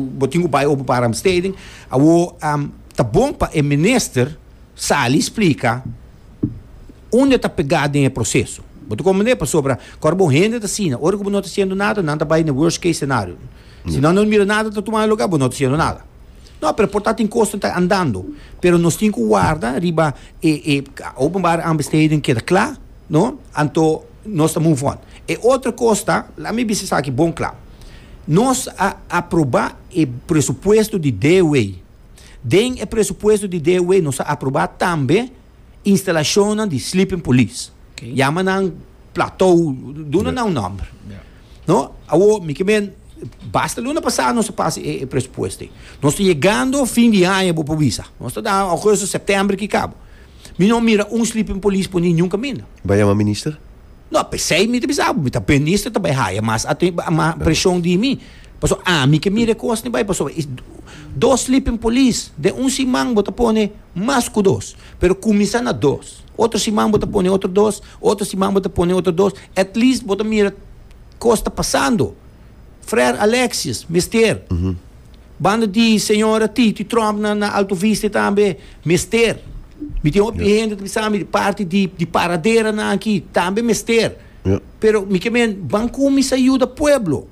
Bo tin ku bai Openbare Besteding. Awor ta bon pa e minister sali splika unda ta pega den e proseso. Bo ta komprende? Pasobra kor bo hende ta asina, ora ku bo no ta hasiendo nada, nan ta bai na worst case scenario. Si nan no mira nada ta tumando lugá, bo no ta hasiendo nada. No, pero por ta tin kos ku ta andando. Pero nos tin ku warda riba e Openbare Aanbesteding keda kla, no, anto. Nos ta move on. E otro cos ta, laat me bisa esaki bon cla. Nos a aproba e presupuesto di DW. Den e presupuesto di DW nos a aproba tambe instalacionnan di sleeping police. Okay. Yama nan plateau, duna nan nomber. No, awo mi ke ben basta luna pasado nos a pasa e, e presupuesto. Nos ta llegando fin di año, bo po bisa. Nos ta da agosto, septiembre ki cabo. Mi no mira un sleeping police por ninjun caminda. Bay yama minister? No, pesey mi ta bisa abo, mi ta minister ta bay haya mas aten mas presion di mi. Paso ami ke mira e cos ni bay, paso is dos sleeping police den un siman bo ta pone mas cu dos, pero cuminsa na dos, otro siman bo ta pone otro dos, otro siman bo ta pone otro dos, at least bo ta mira cos ta pasando. Frer Alexius, Mester. Banda di Señora Titi Tromp na, na Alto Vista tambe, Mester. Mi tin hopi yeah. hende ta bisa mi di parti di, di paradera na aki, tambe mester. Yeah. Pero mi ke men, ban kumisa ayuda pueblo.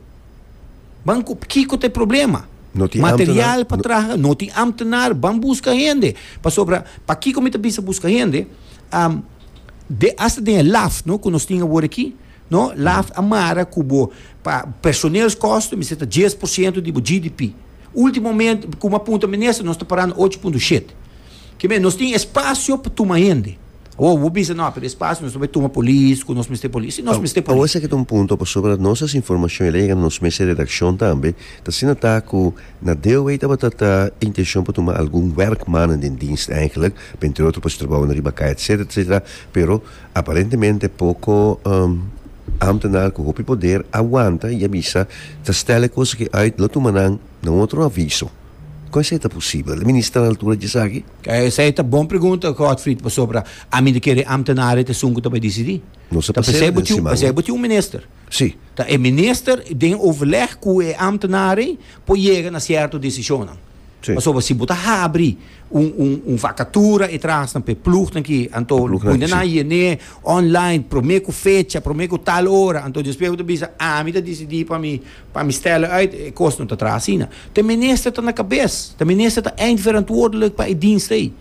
Ban kiko te problema. No tin Material pa traha, no tin ambtenar, ban busca hende. Pasobra, pa kiko mi ta bisa busca hende, um, de, hasta den laf, no, ku nos tin awor aki, No, laf a mara ku bo pa personeelskosten mester ta dies por siento di bo GDP. Ultimo moment, komo a punta minister, nos ta parando ocho punto shete. Ke men, nos tin espasio pa tuma hende. Awor, bo bisa, no, pero espasio nos ta bai tuma polis ku nos mester polis. Si nos mester polis. Awor esaki ta un punto pasobra dat nos as informashon el a yega na nos mesa di redakshon tambe, ta asina ta ku na DOW tabata ta intenshon pa tuma algun wèrkmannen den dienst, èinklik, pa entre otro pa hasi trabou na riba kai, etsetera, etsetera, pero, Aparentemente poko ambtenaar ku hopi poder a wanta i a bisa ta stèl e kosa ki uit lo tuma nan na otro aviso. Kon esei ta posibel? E minister a altura di esaki? Esei ta bon pregunta Godfried pasobra ami di kere ambtenaar et esun ku ta bai disidí. Nos a pas'e den siman no. Esei bo tin un minister. Sí. Ta e minister den overleg ku e ambtenaar ei por yega na sierto desishonnan. Pasobra si bo ta habri un un un vakatura e trahasnan pa e plugnan ki anto bo na nan yen'é online promé ku fecha promé ku tal ora anto despues bo ta bisa ami ta disidi pa mi pa mi stèl'e uit e kos no ta traha asina ta menester ta na kabes ta menester ta eindverantwoordelijk pa e dienst ei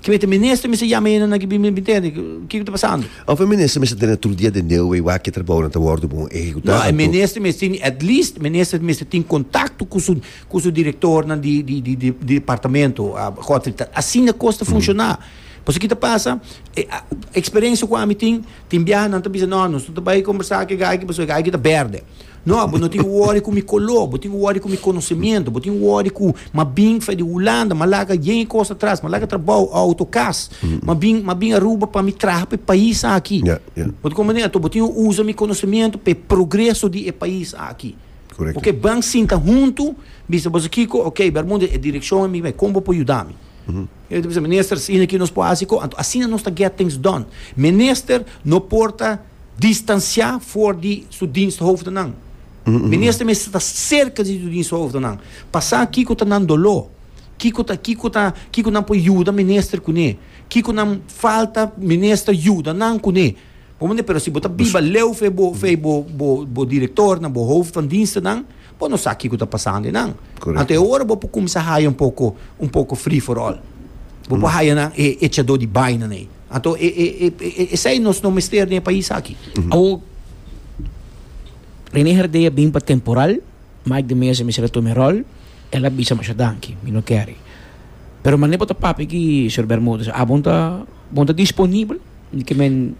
kimes ta menester mester yama e nannan ki bin bin tende kiko ta pasando. Of e minister mester tene tur dia den deu ei wak ki e trabounan ta wòrdu bon ehekutá anto. No e minister mester tin at least minister mester tin kontakto ku su cu su directornan di di di departamento Godfrey Tat asina cos ta funciona pasobra ki ta pasa experiencia cu ami tin tin biaha nan ta bisa no nos no ta bay conversa cu e guy aki pasobra e guy aki ta berde no bo no tin cu worry cu mi color bo tin cu worry cu mi conocimiento bo tin cu worry cu ma bin fai di Hulanda ma laga yen e cos atras ma laga trabou auto cas ma bin ma bin Aruba pa mi traha pa e pais aki bo ta comprende enton bo tin cu usa mi conocimiento pa e progreso di e pais aki. Ok, ban sinta huntu, bisa boso kiko, ok, Bermudez, e direkshon e mi bay, kon bo por yuda mi? E ta bisa, Minister, asina ki nos por hasi ko, anto asina nos ta get things done. Minister no por ta distansiá for di su diensthoofdenan. Minister mester ta serka di su diensthoofdenan pa sa kiko ta nan doló, kiko ta, kiko ta, kiko nan por yuda Minister kuné, kiko nan falta Minister yuda nan kuné. Bo mane, pero si bo ta biba leu fe bo, fe bo, bo, bo directornan, bo hoofd van dienstennan, bo no sa kico ta pasando enan. Correcto. Anto e ora bo por cuminsa haya un poco, un poco free for all. Bo por haya nan e echador di bainan ey. Anto e, e, e, e, e, esey nos no mester den e pais aki. Awor, Rene Herdey a bin pa temporal, Mike de Meza mester a tuma e rol, el a bisa masha danki, mi no kere. Pero mane bo ta papia aki, señor Bermudez, abon ta. Bon ta disponibel di ke men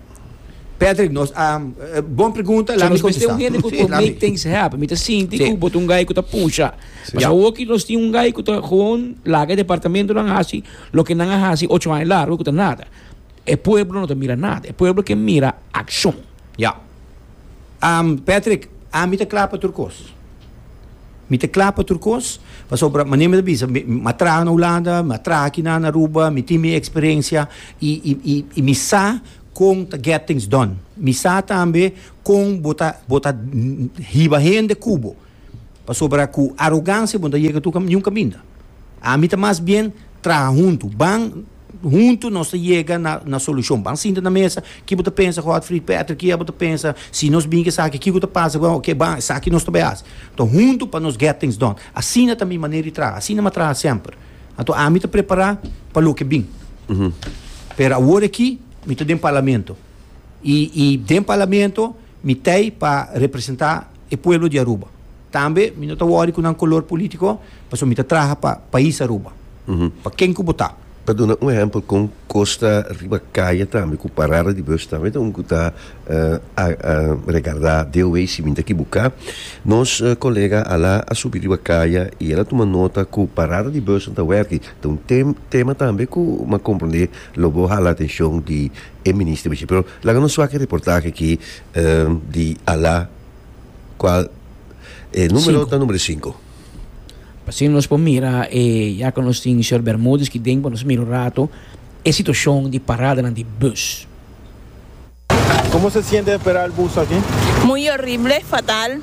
Patrick nos a bon pregunta la mi contesta nos mester un hende cu por make things happen mi ta sinti cu bo ta un guy cu ta pusha mas awo aki nos tin un guy cu ta gewoon laga e departamentonan haci loke nan a haci ocho aña largo cu ta nada e pueblo no ta mira nada e pueblo ke mira accion. Am, Patrick, ami ta kla pa tur kos. Mi ta kla pa tur kos, pasobra manera mi ta bisa, mi, mi a traha na Hulanda, mi a traha aki na, na Aruba, mi tin mi eksperensia, i, i, i, i mi sa kon ta get things done. Mi sa tambe kon bo ta, bo ta hiba hende ku bo. pasobra ku arogansia bo no ta yega tur niun kaminda. Ami ta mas bien traha huntu, ban huntu nos ta yega na na solushon. Ban sinta na mesa, ki bo ta pensa Godfrid, Patrick, ki abo ta pensa si nos bin ke esaki kiko ta pasa bo ke ban esaki nos ta bai hasi. To huntu pa nos get things done. Asina ta mi manera di traha, asina mi a traha semper. Anto ami ta prepara pa loke bin. Pero awor aki mi ta den parlamento. y y den Parlamento mi t'ey pa representa e pueblo di Aruba. Tambe mi no ta worry cu nan color politico pasobra mi ta traha pa pais Aruba, pa ken cu bo ta. Pa duna un ehempel con Costa riba calle tambe cu parada di bus tambe ta un cu ta regarda deo wey si mi ta equibuca. Nos colega Ala a subi riba calle y el a tuma nota cu parada di busnan ta werki. Ta un tem tema tambe cu mi a comprende lo bo hala atencion di e minister bichi pero laga nos wak e reportahe aki di Ala cual e numero ta numero sinku. Asina nos por mira e ya cu nos tin señor Bermudez aki den por nos mira un rato e situacion di paradanan di bus. Como se siente esperar el bus aki? Muy horrible, fatal.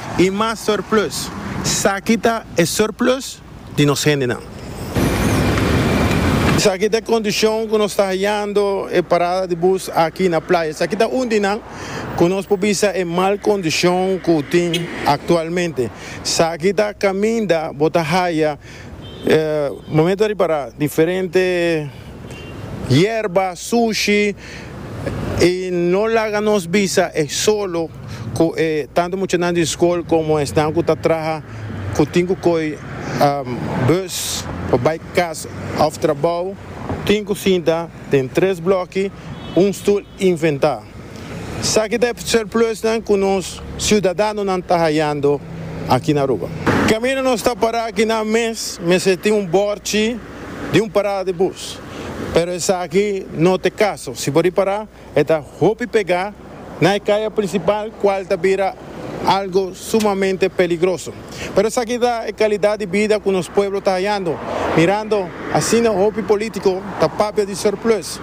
I mas surplus. Saki ta e surplus di nos hendenan. Saki ta e kondishon ku nos ta hayando e parada di bus aki na playa. Saki ta un di nan ku nos por bisa e mal kondishon ku tin aktualmente. Saki ta kaminda bo ta haya. E momento ta ripará diferente yerba, sushi i no laga nos bisa e solo ku e tantu muchanan di skol komo esnan ku ta traha ku tin ku koi bùs pa bai kas òf trabou. Tin ku sinta den tres blòki, un stul inventá. Esaki ta e surplusnan ku nos siudadanonan ta hayando aki na Aruba. Kaminda nos ta pará aki nan mes mester tin un bòrchi di un parada di bus, pero esaki no ta e kaso. Si bo di pará e ta hopi pegá na e kaya prinsipal kual ta bira algu sumamente peligroso. Pero esaki ta e kalidat di bida ku nos pueblo ta hayando, mirando asina hopi polítiko ta papia di surplus,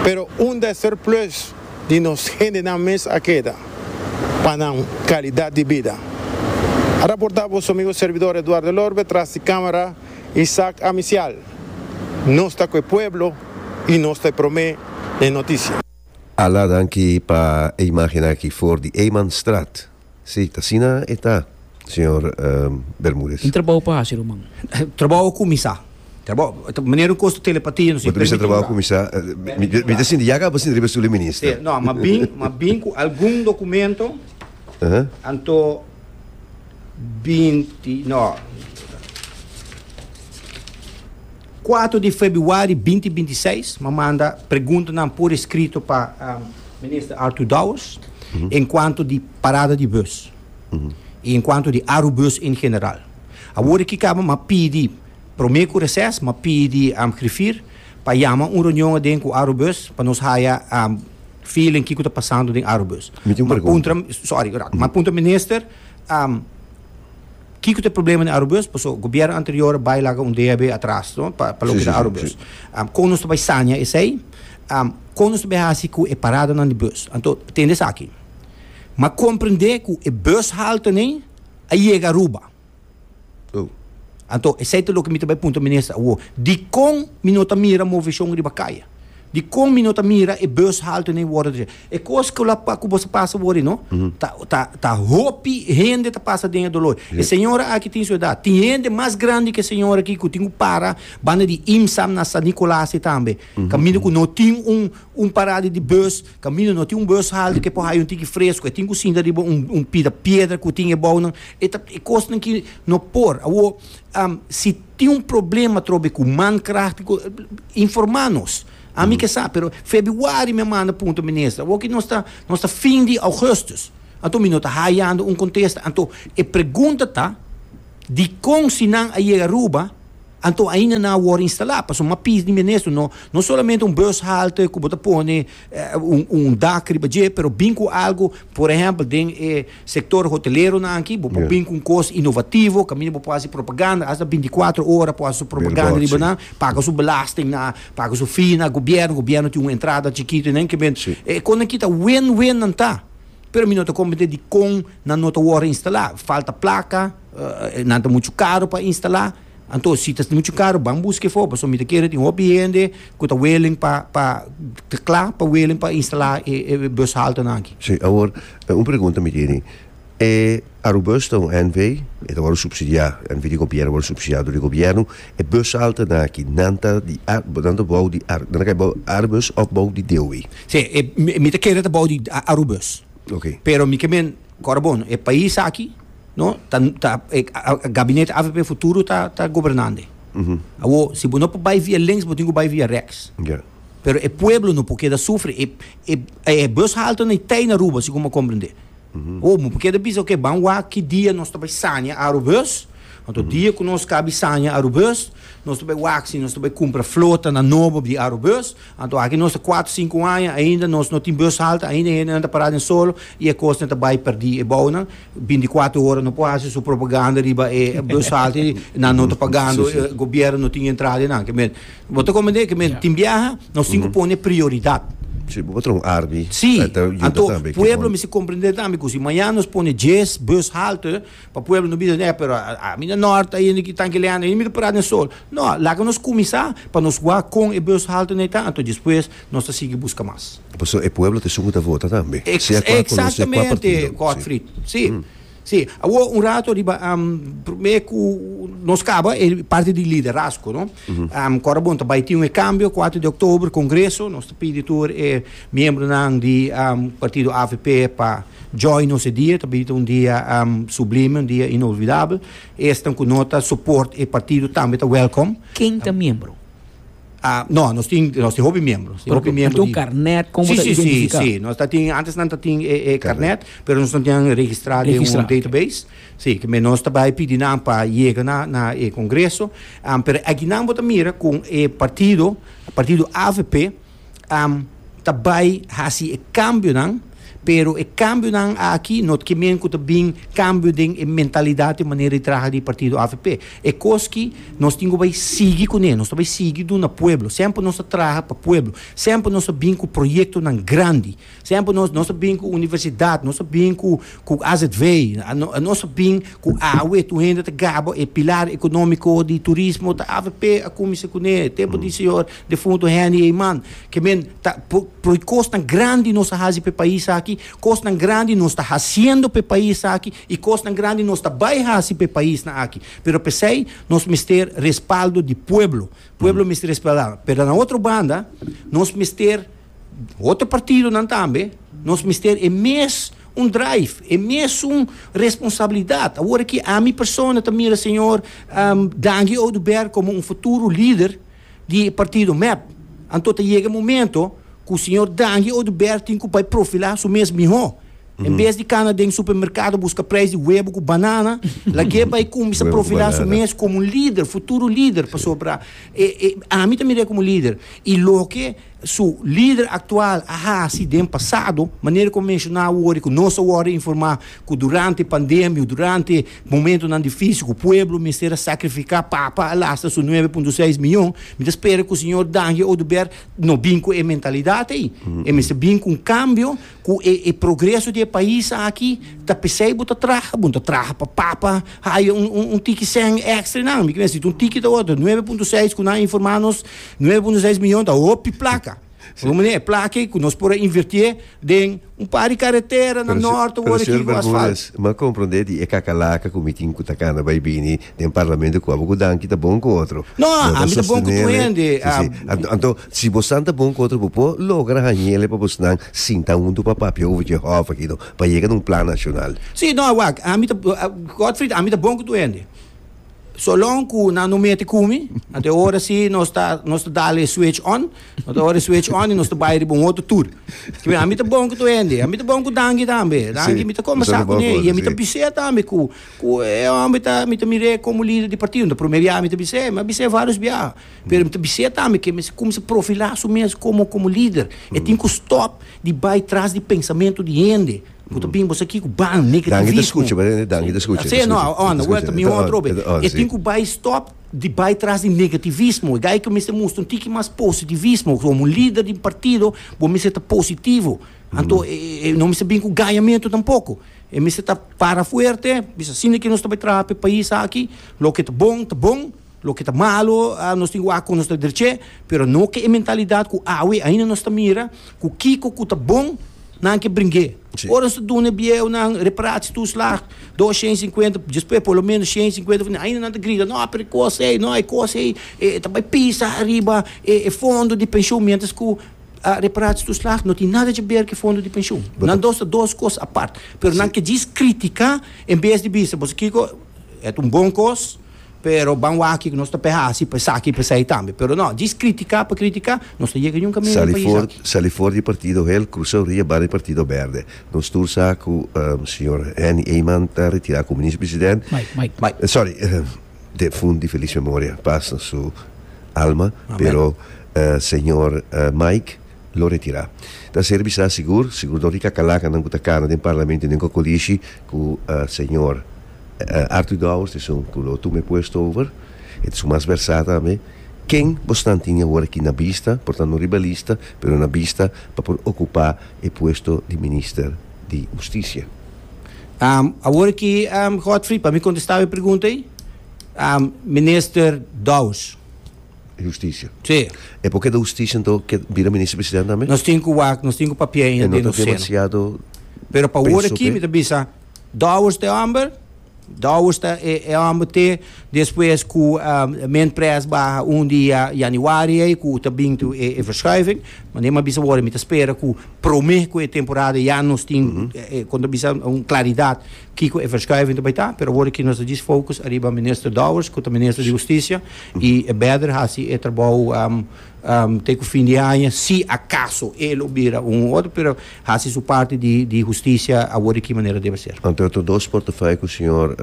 pero unda e surplus di nos hendenan mes a keda pa nan kalidat di bida? a raportá boso amigo servidor Eduardo Lorbe tras di kámara Isaac Amisial. Nos ta ku e pueblo i nos ta e promé na e notisia. Ala danki pa e imágen aki for di Eymanstraat. Sí, asina e ta, señor Bermudez. Un trabao pa haci, ruman. Trabao a cuminsa. Manera un cos ta telepatia, no si e permiti un trabao. Bo ta bisa trabao a cuminsa. Mi ta sinti yaga pa sinti riba e stoel di minister. Sí, no, ma bin, ma bin cu algun documento, anto binti, no. Kuater di febuari binti binti seis mi a manda preguntanan por eskrito pa Minister Arthur Dowers enkuanto di parada di bus i enkuanto di Arubus en general. Awor e kikaba mi a pidi promé ku reses mi a pidi Griffier pa yama un reunion aden ku Arubus pa nos haya feeling kiko ta pasando den Arubus. Mi tin un pregunta. Sorry, graag. Mi a puntra Minister. Kiko ta e problema den Arubus? Paso gobierno anterior a bai laga un DAB atras, no? Pa pa loke ta Arubus. Kon nos ta bai saña esei? Kon nos ta bai hasi ku e paradanan di bus? Anto tende esaki. M'a komprende ku e bushaltenen a yega Aruba. Anto esei ta loke mi ta bai punta Minister awo. Dikon mi no ta mira moveshon riba kaya? Dikon mi no ta mira e bushaltenen wòrdu trese? E cos cu lo cu boso pasa wordie no ta ta ta hopi hende ta pasa den e dolor e señora aki tin su edad tin hende mas grandi ke señora aki cu tin cu para banda di imsam na San Nicolasi tambe caminda cu no tin un un parada di bus caminda no tin un bus halde ke por haya un tiki fresco e tin cu sinta riba un un pida piedra cu tin ebao nan e ta e cos nan ki no por awor si tin un problema trobe cu man krahtico informa nos. Ami ke sa, pero febiuari mi a manda punto minister. Awoki nos ta nos ta fin di augustus. Anto mi no ta hayando un contesta. Anto e pregunta ta dikon si nan a yega Aruba anto ainda nan a wor instala? Paso mi a pish di minister no no solamente un bus halte ku bo ta pone un un dak riba dje pero bin ku algo por ehempel den e Sector hoteleronan aki bo por bin cu un cos inovativo caminda bo por haci propaganda hasta binticuatro ora por haci su propaganda riba nan paga su belastingnan paga su fee na gobierno, gobierno tin un entrada chikito y nan kiber e con aki ta win win nan ta pero mi no ta comprende dicon nan no ta worde instala falta placa nan ta mucho caro pa instala. Anto si ta muchu karu ban buska e for pasobra mi ta kere tin hopi hende ku ta willing pa pa ta kla pa willing pa instala e e bushaltenan aki. Sí, awor un pregunta mi tene. E Arubus ta un NV, e ta wòrdu supsidiá, NV di gobièrnu, wòrdu supsidiá dor di gobièrnu. E bushaltenan aki, nan ta di Ar, nan ta bou di Ar, nan ta kai bou di Arbus òf bou di DOW? Sí, e mi ta kere ta bou di Arubus. Oké. Pero mi ke men. Corbon, e pais aki no ta ta e gabinete avp futuro ta ta gobernande. Awo si bo no por bai via links bo tin ku bai via rechts. Ja. Pero e pueblo no por keda sufri e e e bushalte na itei na Aruba segun bo comprende. Awo bo por keda bisa ok ban wak ki dia nos ta bai saña Arubus anto dia ku nos ka bi saña Arubus nos ta bai wak si nos ta bai cumpra flota na nobo di Arubus. Anto aki nos ta kuater sinku aña ainda nos no tin bus halta ainda hendenan ta para den solo y e kosnan ta bai perdi e bounan bintikuater hora no por hasi su propaganda riba e bus halta y nan no ta pagando gobierno no tin entrada di nan ke men bo ta comprende ke men tin biaha nos tin ku pone prioridad. Si bo patron arbi ta yuda tambe. Si anto pueblo mester comprende tambe ku si mañana nos pone dies bus halta Pa pueblo no bisa neh pero ami na nort ta yende ki tanki leana yende mi ta para den sol no laga nos kuminsa pa nos wak kon e bos haltu na e ta anto despues nos ta sigui buska mas. Paso e pueblo ta esun ku ta vota tambe sea kua kolor sea kua partido si. Gotfrid si si awo un rato riba prome ku nos kaba e parti di liderazgo no kora bon ta bai tin un e kambio kuater di october kongreso nos ta pidi tur e Miembronan di partido avp pa djòi nos e dia, ta bini un dia sublime, un dia inolvidabel. Esnan ku no ta soport e partido tambe ta wèlkom. Ken ta miembro? No, nos tin, nos tin hopi miembro. Nos tin hopi miembro di. Nos tin un karnèt kon bo ta identifiká. Sí, sí, nos ta tin, antes nan ta tin e karnèt, pero nos no tinnan registrá den un database. Sí, ke nos ta bai pidi nan pa yega na e kongreso. Pero aki nan bo ta mira ku e partido, partido avp. am ta bai hasi e kambionan, pero e kambionan aki no ke men ku ta bin kambio den e mentalidat i manera di traha di partido avp. E kos ki nos tin ku bai sigui kuné, nos ta bai sigui duna pueblo, semper nos ta traha pa pueblo, semper nos ta bin ku proyektonan grandi. Semper nos nos ta bin ku universidat, nos ta bin ku ku azv, nos ta bin ku awe tur hende ta gaba e pilar economico di turismo ta avp a cuminsa cune tempo di señor defunto Henny Eyman ke men ta por cosnan grandi nos a haci p'e pais aki, cosnan grandi nos ta haciendo p'e pais aki y cosnan grandi nos ta bay haci p'e paisnan aki pero p'esey nos mester respaldo di pueblo, pueblo mester respaldá pero na otro banda nos mester. Otro partidonan tambe, nos mester e mes un drive, e mesun responsabilidad. Awor aki ami persona ta mira señor Dangie Oduber como un futuro lider di e partido mep. Anto ta yega e momento cu señor Dangie Oduber tin cu bay profila su mes miho. En bes di cana den supermercado busca prijs di webo cu banana, lag'e bay cuminsa Webo cu profila su banana. mes como un lider, futuro lider, pasobra e, e, ami ta mira como lider. Y loke. su lider aktual a hasi den pasado, manera ku a menshoná wori ku nos ta wòrdu informá ku durante pandemia, durante momentunan difísil ku pueblo mester a sakrifiká papa alasta su nuebe punto seis miyon, mi ta spera ku señor Danje Oduber no bin ku e mentalidat ei. E mester bin ku un kambio Cu e e progreso di e pais aki ta pesey bo ta traha, bo no ta traha pa papa haya un un un tiki cen extra y nan. Mi kier necesita un tiki ta otro. Nueve punto seis cu nan a informa nos, nueve punto seis miyon ta hopi placa. Por un manera e placa ey cu nos por a invertie den un par di carretera na Norte wor aki cu asfalt. Pero señor Bermudez, mi a comprende di e cacalaca cu mi tin cu ta cana bay bini. den parlamento cu abo cu danki ta bon cu otro. No, a, ami ta bon cu tur hende. Si, si. Anto, anto, si bosnan ta bon cu otro bo por logra hañele pa bosnan sinta huntu pa papia over dje hof aki no, pa yega na un plan nacional. Si, no, wak, ami ta, Godfried, ami ta bon cu tur hende. So long cu nan no mete cu mi, anto e ora si nos ta, nos ta dal e switch on, nos ta ora e switch on y nos ta bay riba un otro tur. Cibe? Ami ta bon cu tur hende. Ami ta bon cu danki tambe. Danki, Si, mi ta bosnan ta conversa bon cu cu ne y otro, ami ta si. bis'é tambe cu, Cu e homber ta, mi ta mir'é como lider di partido, no ta prome biaha mi ta bis'é, mi a bis'é varios biaha, pero mi ta bis'é tambe que mester cuminsa profilá su mes como, como lider, e tin cu stop di bay tras di pensamento di hende cu ta bini boso aki cu ban, negativismo, asina no, aonda, word ta bini otro hopi, e tin cu bay stop di bay tras di negativismo, e dai cu mester mustra un tiki mas positivismo, como un lider di un partido bo mester ta positivo, anto e no mester bini cu gañamentu tampoco. E mester ta para fuerte, bisa asina ke nos ta bai traha pa e pais aki, loke ta bon ta bon, loke ta malu nos tin ku wak kon nos ta dreche, pero no ke e mentalidat ku awe ainda nos ta mira ku kiko ku ta bon nan ke bring'é. Ora nos ta duna e bieunan reparatie toeslag dos shen sinkuenta, despues por lo menos shen sinkuenta for, ainda nan ta grita no pero e kos ei, no e kos ei ta bai pisa ariba e fondo di penshon mientras ku A Reparatie toeslag no tin nada dje ber ke fondo di pensioen. Nan dos ta dos kos apart. Pero nan ke djis kritika en bes di bisa boso kiko et un bon kos pero ban wak kiko nos ta pe hasi pa esaki i pa esai tambe. Pero no, djis kritika pa kritika nos ta yega niun kaminda país Sali aki. for sali for di partido hel crusa ria banda di partido berde. Nos tur sa cu señor Henny Eyman ta retira como minister president. Mike, Mike. Mike. Sorry. Te fun di felis memoria, pas na su alma, pero señor Mike lo retira. Ta ser bisa sigur, sigur dor di kakalakan nan ku ta kana den parlamento y den kokolishi ku señor Arthur Dowers ta esun ku lo tuma e puesto over, e ta esun mas versá tambe. Ken bo snan tin awor aki na bista, por tanto no riba lista, pero na bista pa por okupá e puesto di minister? di husticia. Awor ki Godfrey pa mi contestaba e pregunta ey, Minister Dous. Di husticia. Sí. E por keda husticia ento ke bira Minister President tambe? Nos tin ku wak, nos tin ku papia ainda den nos seno. Pero pa awor aki mi ta bisa Dous ta e homber. Dowers ta e homber te despues cu Mint Press baha un dia Januari ey cu ta bin to e verschuiving. Mane mi a bisa worde mi ta spera cu prome cu e temporada ya nos tin con ta bisa un claridad kico e verschuiving ta bay ta. Pero worde aki nos ta djis focus ariba Minister Dowers cu ta Minister di Husticia y e beder haci e trabou Te ku fin di aña, si akaso e lo bira un u otro, pero hasi su parti di di hustisia awor di ki manera debe ser. Anto e otro dos portefeuille ku señor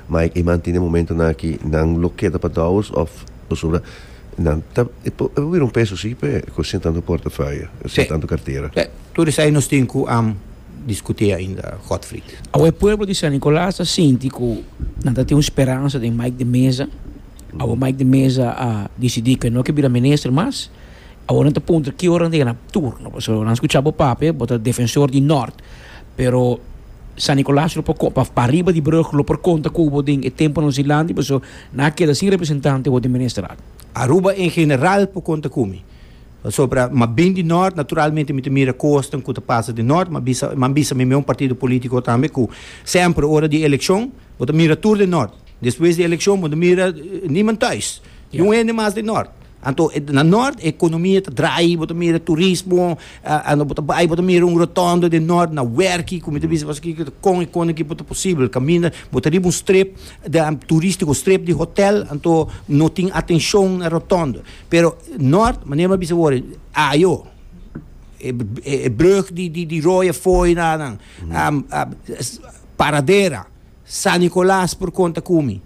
Mike Eman tin den momentonan aki, nan lo keda pa Dowers òf pasobra nan ta e por e por bira un peso si p'e ku sin tantu portefeuille, sin tantu kartera? Sè. Tur esei nos tin ku diskut'é ainda, Godfried. Awor e pueblo di San Nicolas ta sinti ku nan ta tin un speransa den Mike de Meza. Awo Mike de Meza a disidí ku e no ke bira minister mas. Awor nan ta puntra ki ora nan ta yana turno, pasobra nan skuchá bo papia, bo ta defensor di Nort. Pero San Nikolaas lo por pa pa riba di brug lo por konta ku bo den e tempu nan silanti paso nan a keda sin representante awor den ministerat. Aruba en general por konta ku mi. Pasobra m'a bini di Nort, naturalmente mi ta mira kosnan ku ta pasa den Nort. M'a bisa, m'han bisa mi mi un partido politiko tambe ku semper ora di elekshon bo ta mira tur den Nort. Despues di elekshon bo no mira niman tuis, ni un hende mas den nort. Anto na nort e ekonomia ta drai, bo ta mira turismo, ando bo ta bai bo ta mira un rotondo den nort na werki ku mi ta bisa pasobra kiko ta kon i kon aki por ta posibel. Kaminda bo ta riba un strip turistiko, strip di hotel, anto no tin atenshon na rotondo. Pero nort, manera mi a bisa wor, ayo, e brug di di di Rooie Fooi nan, Paradera. San Nicolas por konta ku mi.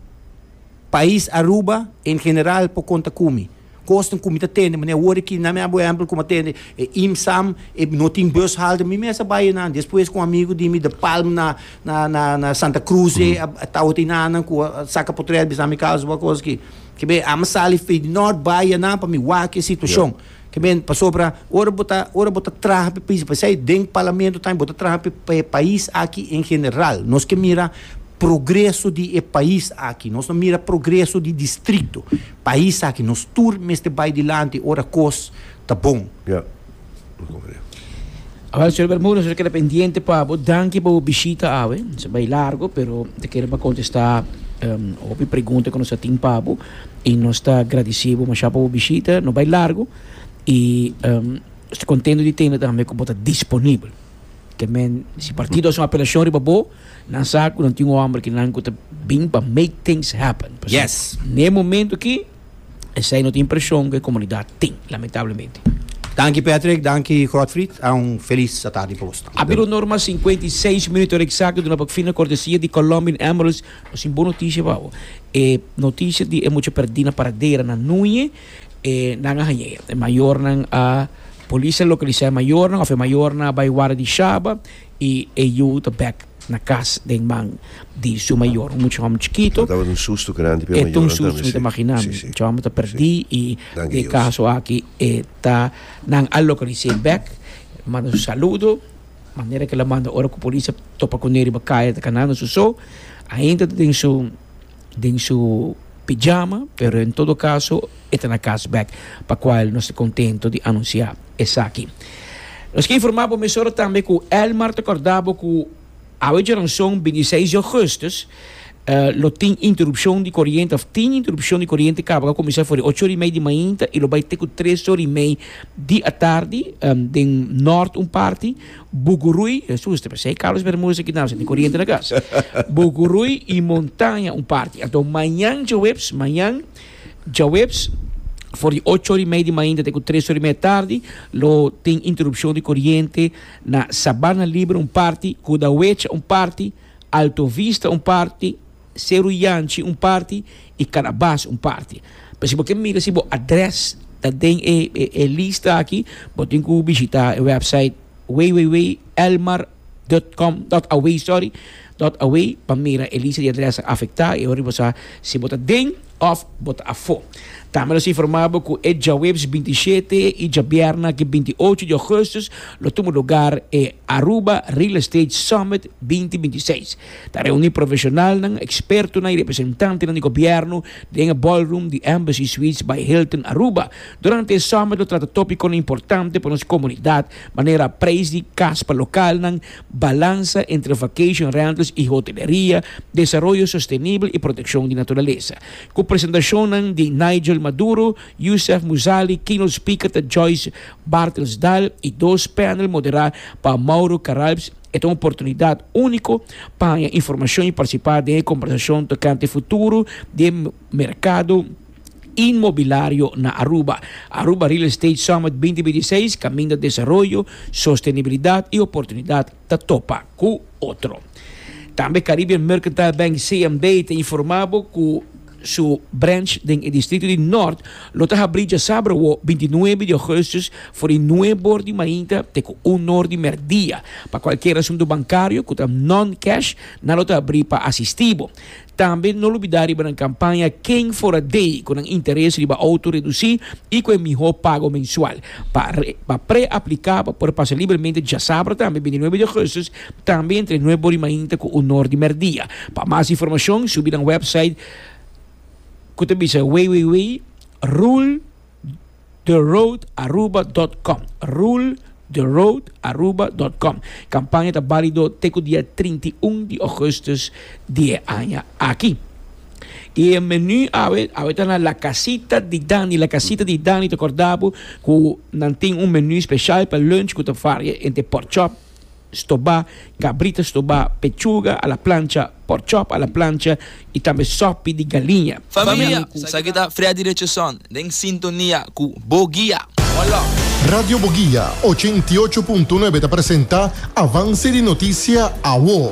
Pais Aruba en general por konta ku mi. Kosnan ku mi ta tende manera wor aki, nan mi a bo ehèmpel ku mi a tende e IMSAM, e no tin bus halte, mi mes a bai einan. Despues ku un amigu di mi de Palm na, na, na, na Santa Cruz ei a tawat einan nan ku a saka potrèt bisnan mi kousa, bo a kos aki. Ke bai, ami a sali Fey di Nort bai einan pa mi wak e situashon. Kimen pasobra ora bo ta ora bo ta traha pa e pais paisai den parlamento tambe bo ta traha pa pa e pais aki en general nos ke mira progreso di e pais aki nos no mira progreso di distrito pais aki nos tur mester bai dilanti ora kos ta bon. Ya lo comprende. Awel señor Bermúdez nos a keda pendiente pa bo danki pa bo bishita awe nos a bai largo pero ta kere pa contesta hopi pregunta ku nos a tin pa bo. y nos ta agradeci bo masha pa bo bishita, no bay largo y nos ta contento di tende tambe cu bo ta disponibel. Te men si partido a haci un apelacion riba bo, nan sa cu nan tin un homber kinan cu ta bin pa make things happen. Pasobra Yes. n'e momento aki esey no ta impresion cu e comunidad tin, lamentablemente. Danki Patrick, danki Godfried, a un feliz atardi pa bos tambe. Abir honor mas cincuenta y seis minuto hora exacto duna pa fin na cortesia di Colombian Emeralds. Nos tin bon noticia pa bo. E noticia di e mucha perdi na Paradera na Nuñe, e nan a haña e. E mayornan a, polis a localisa e mayornan of e mayornan a bai wara di shaba y e yu ta bek na cas den man di su mayor, un mucha homber chikito. Tabata un susto grandi pa e mayornan tambe, si. E ta un susto, mi ta magina mi. Si, si. Mucha homber ta perdi y Danki den e Dios. caso aki e ta, nan a localisa e bek, manda su saludo. Manera ke el a manda ora ku polis a topa ku Neri riba kaya ta kanando su so, ainda ta den su den su pijama, pero en todo kaso e ta na kas bèk, pa kual nos ta kontento di anunsiá esaki. Nos ke informá bo mesora tambe ku Elmar ta kòrda bo ku awe djoranson binti seis di ougùstùs, lo tin interupshon di koriente òf tin interupshon di koriente kaba ka kuminsá for di ocho ora i mei di mainta i lo bai te ku tres ora i mei di atardi den nòrt un parti, Buguruí, asusta pues, si hay cables Bermudas aquí tambe, si no tin koriente na kas, Buguruí i Montaña un parti. Anto mañan djaweps, mañan djaweps for di ocho ora i mei di mainta te ku tres ora i mei di atardi lo tin interupshon di koriente na Sabana Libre un parti, Kudawecha un parti, Alto Vista un parti, Seru Yanchi un parti y Carabas un parti. Pero si bo ke mira si bo adres ta den e e lista aki bo tin ku bishita e website www.elmar.com.aw sorry dot aw pa mira e lista di adres afecta y ora bo sa si bo ta den Òf bo ta afó? Tambe nos a informá bo ku e djaweps binti shete i djabièrna ke binti ocho di ògùstùs lo tuma lugar e Aruba Real Estate Summit binti binti seis. Ta reuní profeshonalnan, ekspertonan i representantenan di gobièrnu den e ballroom di Embassy Suites by Hilton Aruba. Durante e summit lo trata tópikonan importante pa nos komunidat, manera preis di kas pa lokalnan, balansa entre vacation rentals y hoteleria, desaroyo sostenibel y proteccion di naturalesa. Cu presentacionnan di Nigel Maduro, Yousef Mousali, keynote speaker ta Joyce Bartels Dahl y dos panel modera pa Mauro Caralps, e ta un oportunidad unico pa haya informacion y participa den e conversacion tocante futuro di e mercado. Inmobilario na Aruba. Aruba Real Estate Summit binti binti seis, Kaminda Desaroyo, Sostenibilidat i Oportunidat ta topa ku otro. Tambe Caribbean Mercantile Bank, CMB, ta informá bo ku su branch den e distrito di Nort lo ta habrí djasabra awor binti nuebe di Augustus for di nuebe or di mainta te ku un or di mèrdia. Pa kualkier asuntu bankario ku ta non-cash nan lo ta habrí pa asistí bo. Tambe no lubidá riba nan kampaña Ken for a Day ku nan interes riba outo redusí i ku e mihó pago mensual. Pa pre-apliká pa por pasa libremente djasabra tambe bini nuebe di ougustus, tambe entre nuebe bor i mainta ku un nor di mèrdia. Pa mas informashon subi nan wèpsait ku ta bisa www. Rule. rultheroadaruba.com, rultheroadaruba.com. Kampaña ta bálido te ku dia trinta i un di ògùstus di e aña aki. I e menú awe, awe ta na La Casita di Dani. La Casita di Dani ta kòrda bo ku nan tin un menú speshal pa lùnch ku ta varia entre pork chop, stobá, kabrit a stobá, pechuga a la plancha, pork chop a la plancha i tambe sòpi di galiña. Famia, esaki ta Freddy Richardson den sintonia ku Boguia. Wòlòp! Radio Boguia ochenta i ocho punto nuebe ta presenta Avance di Noticia Awo.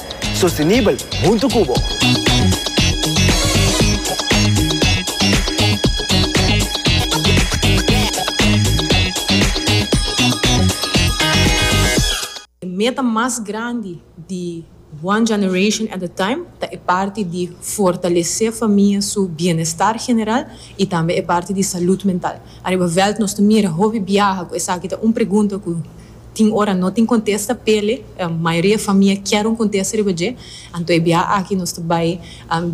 Sostenibel huntu cu bo. E meta mas grandi di One Generation at a Time ta e parti di fortalece famia su bienestar general y tambe e parti di salud mental. Ariba veld nos ta mira hopi biaha cu esaki ta un pregunta cu Tin ora no tin contesta pele mayoria famia kier un contesta riba dje, anto e biaha aki nos ta bay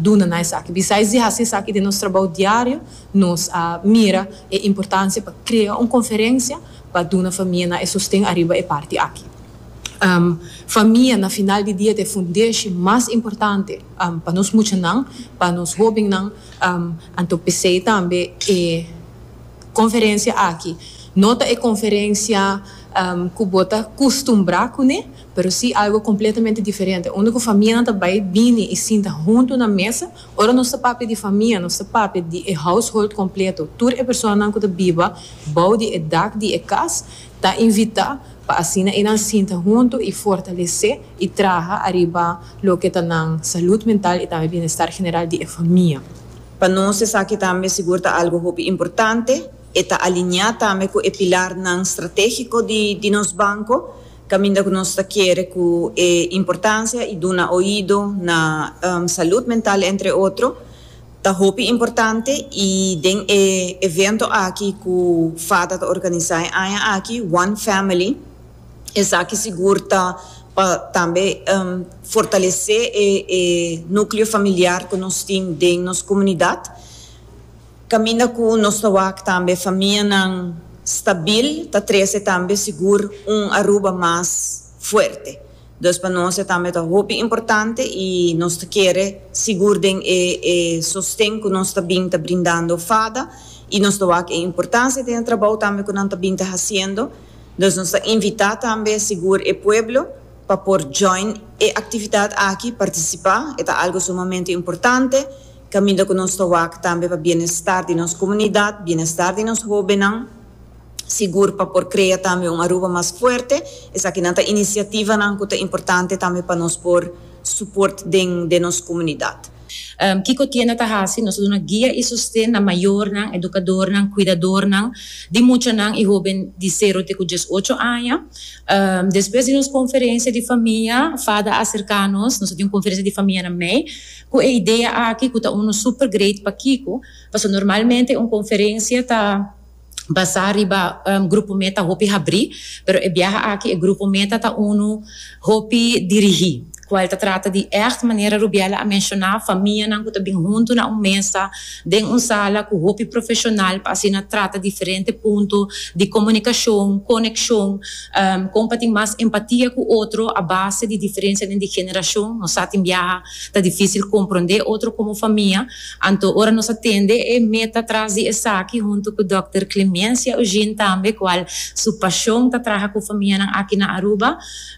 duna na esaki. Bisais di haci esaki den nos trabao diario nos a mira e importancia pa crea un conferencia pa duna famianan e sosten ariba e parti aki. Famia na final di dia ta e fundeshi mas importante pa nos muchanan, pa nos hobennan, anto pesey tambe e. Conferencia aki no ta e conferencia cu bo ta custumbra cune, pero si algo completamente diferente, unda cu famianan ta bay bini y sinta hunto na mesa. Ora nos ta papia di famia, nos ta papia di e household completo, tur e personanan cu ta biba bou di e dak di e cas ta invita pa asina enan sinta hunto y fortalece y traha ariba loke ta nan salud mental y tambe bienestar general di e famia. Pa nos esaki tambe sigur ta algu hopi importante. E ta alineá tambe ku e pilarnan stratégiko di nos banko, kaminda ku nos ta kere ku e importansia i duna oido na salud mental entre otro ta hopi importante i den e evento aki ku fata ta organisá e aña aki, One Family, Esaki sigur ta pa tambe fortalesé e núkleo familiar ku nos tin den nos komunidat, kaminda ku nos ta wak tambe famianan stabil, ta trese tambe sigur un Aruba mas fuerte. Dus pa nos e tambe ta hopi importante i nos ta kere sigur den e e sosten ku nos ta bin ta brindando fada i nos ta wak e importansia den e trabou tambe ku nan ta bin ta hasiendo. Dus nos ta invitá tambe sigur e pueblo pa por join e aktividat aki, partisipá, e ta algu sumamente importante kaminda ku nos ta wak tambe pa bienestar di nos komunidat, bienestar di nos hóbennan, sigur pa por krea tambe un Aruba mas fuerte. Esaki nan ta inisiativanan ku ta importante tambe pa nos por suport den nos komunidat. Kiko tienda ta hasi? Nos ta duna guia i sosten na mayornan, edukadornan, kuidadornan di muchanan i hóben di sero te ku dies ocho aña. Despues di nos konferensia di famia, Fada a serká nos, nos a tin un konferensia di famia na mei, ku e idea aki ku ta unu super great pa Kiko, pasobra normalmente un konferensia ta. basá riba grupo mé ta hopi habrí, pero e biaha aki e grupo mé ta ta unu hopi dirigí, kual ta trata di ègt, manera Rubiela a menshoná, famianan ku ta bin huntu na un mesa den un sala ku hopi profeshonal pa asina trata diferente punto di komunikashon, konekshon, kon pa tin mas empatia ku otro a base di diferensianan di generashon. Nos sa tin biaha ta difísil komprondé otro komo famia. Anto ora nos a tende e meta tras di esaki huntu ku dòkter Clemencia Eugene tambe kual su pashon ta traha ku famianan aki na Aruba,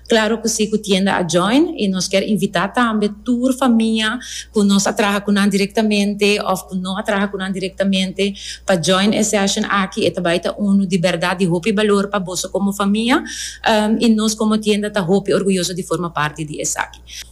klaro ku si ku tienda a join i nos kier invitá tambe tur famia ku nos a traha ku nan direktamente òf ku no a traha ku nan direktamente pa join e sèshon aki e ta bai ta unu di bèrdat di hopi balor pa boso komo famia i nos komo tienda ta hopi orguyoso di forma parti di esaki.